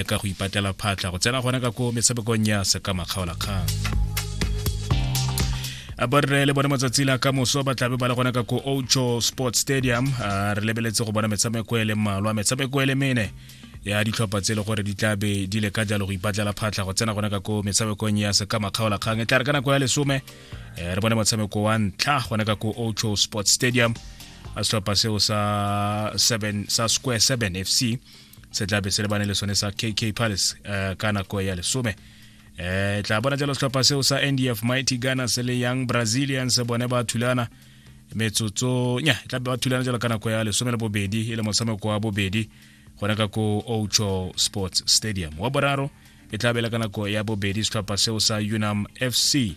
e ka go ipatlela phatlha go tsena gona ka ko metshamekong ya sekamakgaolakgang borre le bone matsatsi la ka moso ba tlabe ba le gona ka ko ocho sport stadium re lebeletse go bona metshameko e le mmalwa metshameko e le mene ya ditlhopha tse e le gore di tlabe di le ka jalo go ipatlela phatlha go tsena gona ka ko metshamekong ya sekamakgaolakgang e tla re ka nako ya lesome eh, re bone motshameko wa ntlha gona ka ko ocho sport stadium a setlhopha seo sa 7 sa square 7 fc se tla be se lebane le sone sa kk palace uh, ka nako ya lesome eh tla bona jalo setlhopha seo sa ndf mighty ghana se le young brazilians bone ba thulana metsotso nya tla be ba thulana jalo ka nako ya lesome le bobedi e le motshameko wa bobedi gona ka ko ocho sports stadium wa boraro e tla bela ka nako ya bobedi setlhopha seo sa unam fc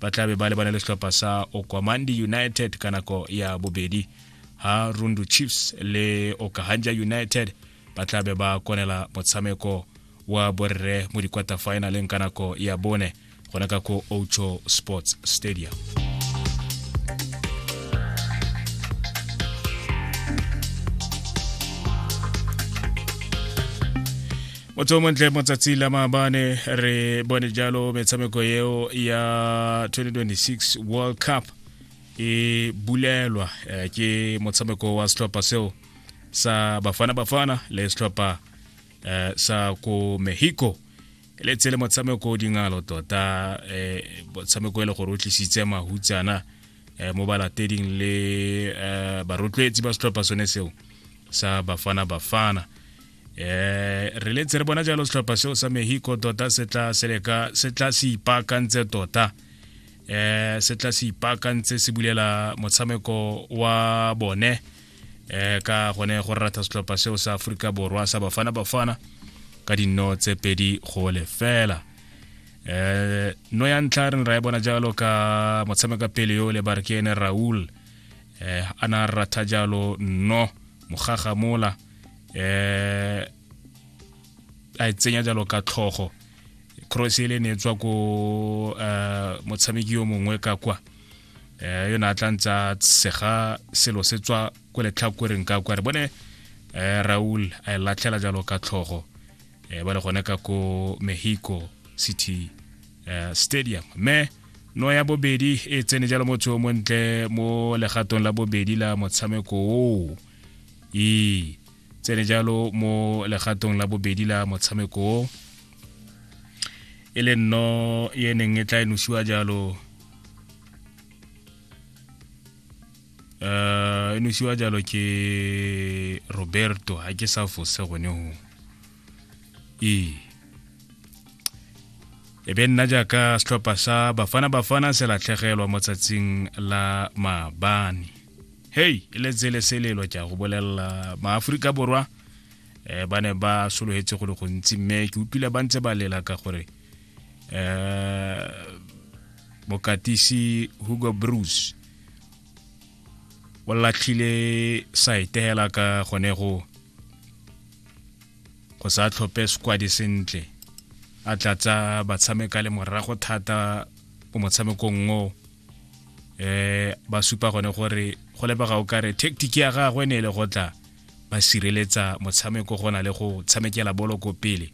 ba tla be ba lebane le setlhopha sa okwamandi united ka nako ya bobedi ha rundu chiefs le okahandja united ba tla be ba konela motshameko wa borre mo di-quarter finaleng ka nako ya bone gona ka ko ocho sports stadium motho montle motsatsi la maabane re bone jalo metshameko eo ya 2026 world cup e bulelwa eh, ke motshameko wa setlhopha seo sa bafana bafana le setlhopha eh, sa ko mexico le tse le motshameko dingalo tota eh, motshameko e le gore o tlisitse mahutsana eh, mo balateding le eh, barotloetsi ba setlhopha sone seo sa bafana bafana eh re letse re bona jalo setlhopha seo sa mexico tota se tla se leka se tla se ipaakantse tota eh se tla se ipaakantse se bulela motshameko wa bone eh ka gone go rata setlhopha seo sa Afrika Borwa sa Bafana Bafana ka dinno tse pedi go lefela eh no ya ntlha re ra e bona jalo ka motshameka pele yo le Barkene Raul eh ana rata jalo no mogaga mola eh a e tsenya jalo ka tlhogo cross ele ne tswa ko uh, motshameki yo mongwe ka kwa eh yona tla ntsa sega selo se tswa ko letlhakoreng ka kwa re bone eh Raul a e latlhela jalo ka tlhogo eh ba le gone ka ko Mexico City eh, Stadium me no ya bobedi e tsene jalo motho o montle mo legatong la bobedi la motshameko o e tsene jalo mo legatong la bobedi la motshameko o e le nno e neng e tla e nosiwa jalo um e nosiwa jalo ke roberto ga ke sa fose gone go ee e be nna jaaka setlhopha sa bafana bafana se latlhegelwa mo tsatsing la maabane hei e le tsele selelo ke a go bolelela maaforika borwa um ba ne ba sologetse go le gontsi mme ke utlwile ba ntse ba lela ka gore um bokatisi hugo bruce o latlhile saete hela ka gone go go sa tlhope squadi sentle a tlatsa batshameka le morago thata mo motshamekong o eh ba supa gone gore go lebega o kare tactic ya gagwe ne e le go tla ba sireletsa motshameko go na le go tshamekela bolo ko pele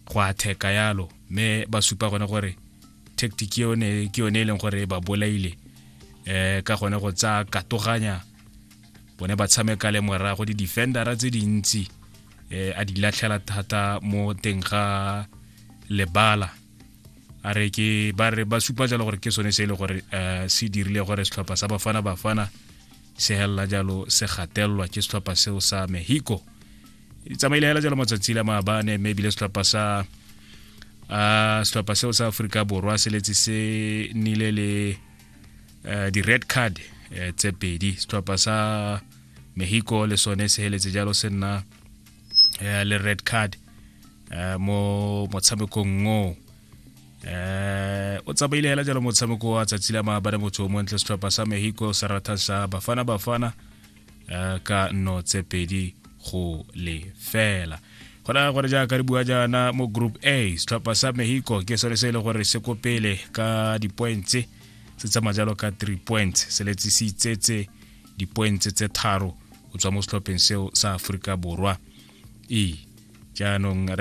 go atheka yalo mme ba supa gone gore tactic ke yone e leng gore ba bolaile eh ka gone go tsa katoganya bone ba tshameka le morago di-defendera tse dintsi eh a di latlhela thata mo teng ga lebala a re ke ba re ba supa jalo gore ke sone se e le gore eh, se dirile gore setlhopha sa bafana bafana se helela jalo se gatelelwa ke setlhopha seo sa mexico di tsamaile hela jalo matsatsi la maabane mme ebile setlhopha sa uh, setlhopha seo sa aforika borwa se letse se nile le uh, di-red card uh, tse pedi setlhopha sa mexico le sone se heletse jalo se nna eh, le red card eh, mo motshamekong ngo eh o tsamaile hela jalo motshameko wa tsatsi la maabane motho o montle setlhopha sa mexico sa ratang sa bafana bafana eh, ka nno tse pedi go lefela go raya gore jaaka re bua jaana mo group a setlhopha sa mexico ke sone se e le gore se ko pele ka dipointse se tsamaya jalo ka three points se letsisitsetse dipointse tse tharo o tswa mo setlhopheng seo sa aforika borwa e jaanong